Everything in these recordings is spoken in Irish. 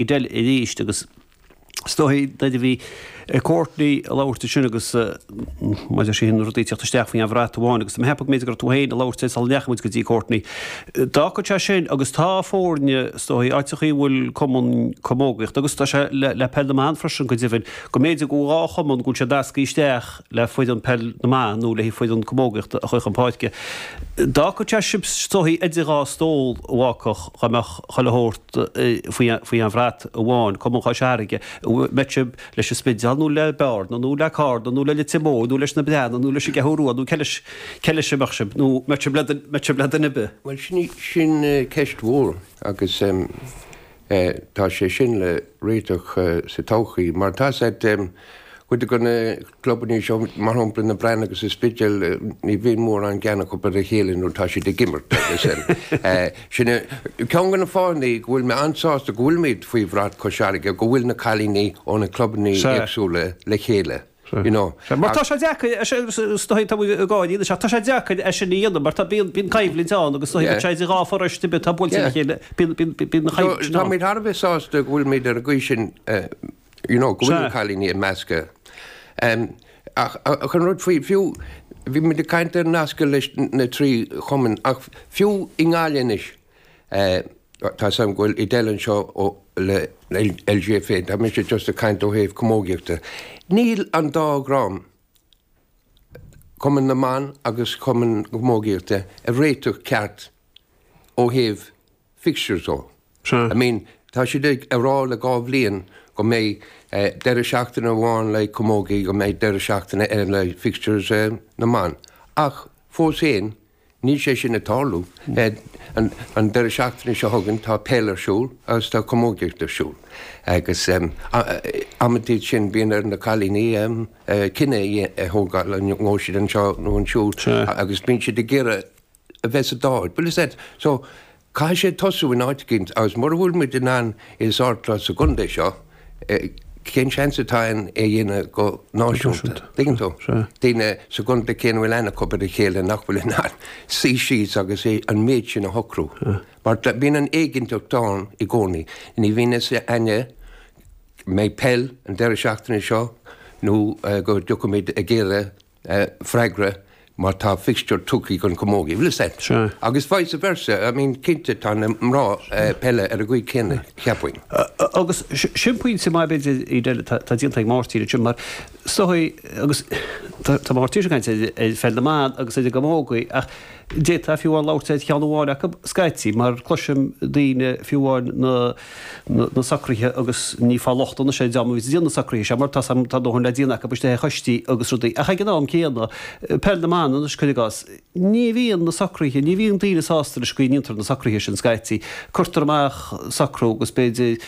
i dtaobh anois agus is dóichí nuair a bhí Courtney ag labhairt ansin agus maidir le sin na rudaí a thíocht isteach faoi aon bhrat amháin agus tá mé ag ceapadh go mb'fhéidir gur tú féin a labhair é sula ndeachaigh muid go dtí Courtney. D'fhágfadh sé sin agus tá foirne, is dóichí, áiteacha a bhfuil cumann camógaíochta agus tá sé le peil na mban freisin go deimhin go mb'fhéidir go dhá chumann go bhfuil siad nasctha isteach. le foireann peil na mban nó le foireann camógaíochta a chur chun páirce. D'fhágfadh sé sibh is dóichí idir dhá stól a bhuachaill dá mbeadh chuile shórt faoi aon bhrat amháin, Cumann Chois Fharraige, an mbeadh sibh leis an Spidéal nó le Bearna nó le Carna nó le Leitir Móir nó leis na Breathnaigh nó leis an gCeathrú Rua nó cé leis a mbeadh sibh nó an mbeadh sibh le duine ar bith? Bhuel, sin ceist mhór agus. Eh, tá sé sin le réiteach sa todhchaí. Mar tá a fhios agat, eh, cuid de na clubannaí seo, mar shampla Bearna agus an Spidéal, eh, ní bhíonn mórán gean acu ar a chéile nuair atá siad ag imirt agus sin. Eh, sin é ceann de na fáthanna go bhfuil mé an-sásta go bhfuil muid faoi bhrat Chois Fharraige, go bhfuil na cailíní óna clubannaí éagsúla le chéile. Sea, mar tá sé deacair é sin, is dóigh, tá muid ag gáirí anois, ach tá sé deacair é sin a dhéanamh, mar tá, bíonn, bíonn coimhlint ann agus is dóigh go bhfuil sé idir dhá pharáiste ar bith atá buailte ina chéile, bíonn, bíonn, bíonn an choimhlint sin ann. Tá muid thar a bheith sásta go bhfuil muid ar an gcaoi sin, you know, go bhfuil na cailíní ag meascadh. Ach an rud faoi, fiú, bhí muid ag caint ar nascadh leis na trí chumann, ach fiú i nGaillimh anois, Tá a fhios agam go bhfuil tú ag déileáil anseo le LGFA, tá mise just ag caint ó thaobh camógaíochta. Níl an dá dhream, cumann na mban agus cumann na camógaíochta, ag réiteach ceart ó thaobh fixtures de. I mean, tá siad ag rá le dhá bhliain go mbeidh deireadh seachtaine amháin le camógaí, go mbeidh deireadh seachtaine eile le fixtures na mban, ach fós féin, Níl sé sin ag tarlú. An deireadh seachtaine seo chugainn tá peil ar siúl agus tá camógaíocht ar siúl agus amantaí sin bíonn ar na cailíní cinneadh a thógáil an ngabhfaidh siad anseo nó ansiúd agus bíonn siad ag iarraidh a bheith sa dá áit. Bhfuil a fhios agat. So, Caithfidh sé tosú in áit eicínt, agus mura bhfuil muid in ann é a shórtáil sa gcontae seo, cén seans atá ann é a dhéanamh go náisiúnta? An dtuigeann tú? Daoine sa gcontae céanna a bhfuil aithne acu ar a chéile nach bhfuil in ann suí síos agus an méid sin a shocrú. Mar bíonn an éiginnteacht ann i gcónaí. Ní bhíonn a fhios againn an mbeidh peil an deireadh seachtaine seo nó go dté muid ag iarraidh freagra mar tá fixture tugtha don chamógaí, bhfuil a fhios agat Sea. Agus vice versa, I mean, cinnte tá na mná peile ar an gcaoi chéanna, cheapfainn. Agus sin pointe maith b'fhéidir eile atá déanta ag Máirtín ansin, mar is dóichí, agus tá muid anseo ag caint ar pheil na mban agus ar an gcamógaí, ach D'fhéadfá fiú amháin labhairt ar cheann amháin acu, scaití, mar cloisim daoine, fiú amháin na, na, na socruithe agus ní ag fáil locht anois ar an dream a bhíonns ag déanamh na socruithe seo mar tá, tá a ndóthain le déanamh acu istigh i choistí agus rudaí. Ach ag an am céanna, Peil na mBan anois, cuir i gcás, ní bhíonn na socruithe, ní bhíonn daoine sásta leis an gcaoi a ndéantar na socruithe sin scaití, cuirtear amach socrú agus b'fhéidir,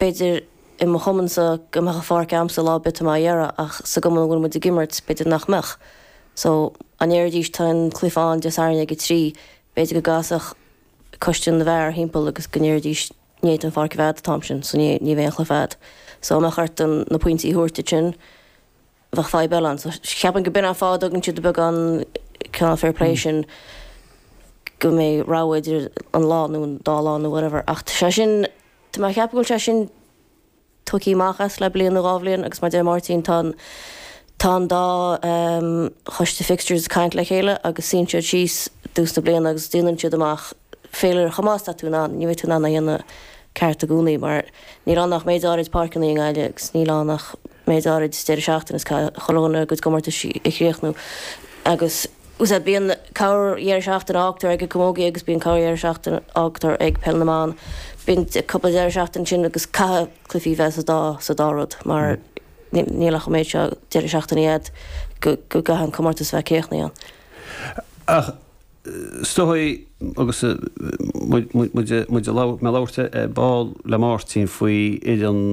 B'fhéidir, i mo chumannsa, go mbeadh an pháirc a'amsa lá ar bith atá mé dhá iarraidh ach sa gcumann a bhfuil muid ag imirt, b'fhéidir nach mbeadh. So, dá ndéarfaidís tá an cluiche ann Dé Sathairn ag a trí, b'fhéidir go gcasfadh coiste na bhfear thimpeall agus go ndéarfaidís ní fhéadfaidh an pháirc a bheith a'd an t-am sin, so ní bheidh aon chluiche a'd. So, dá mbeadh ort na pointí a thabhairt uait ansin bheadh fadhb eile ann. So cheapfainn go b'in an fáth a dtugann siad an beagán cineál fair play sin go mbeidh rogha idir an lá nó an dá lá nó whatever. Ach tá sé sin, tá mé ag ceapadh go bhfuil sé sin tóigthe amach as le bliain nó dhá bhliain agus mar a deir Máirtín tá an, tá an dá choiste fixtures ag caint le chéile agus suíonn siad síos i dtús na bliana agus déanann siad amach féilire chomh maith is atá tú in ann, ní bheidh tú in ann é a dhéanamh ceart i gcónaí mar níl ann ach méid áirid páirceanna i nGaillimh agus níl ann ach méid áirid deireadh seachtaine is caithfidh chuile dhuine a gcuid comórtais a chríochnú agus bíonn corr-dheireadh seachtaine a fhágtar ag an camógaí agus bíonn corr-dheireadh seachtaine a fhágtar ag peil na mban, bíonn cúpla deireadh seachtaine ansin agus caithfidh cluifí bheith sa dá sa dá rud mar níl ach an méid seo deireadh seachtaine agat go gcaithfidh an comórtas a bheith críochnaithe ann. Ach Is dóichí agus muid ag labhairt ar ball le Máirtín faoi Fhir an.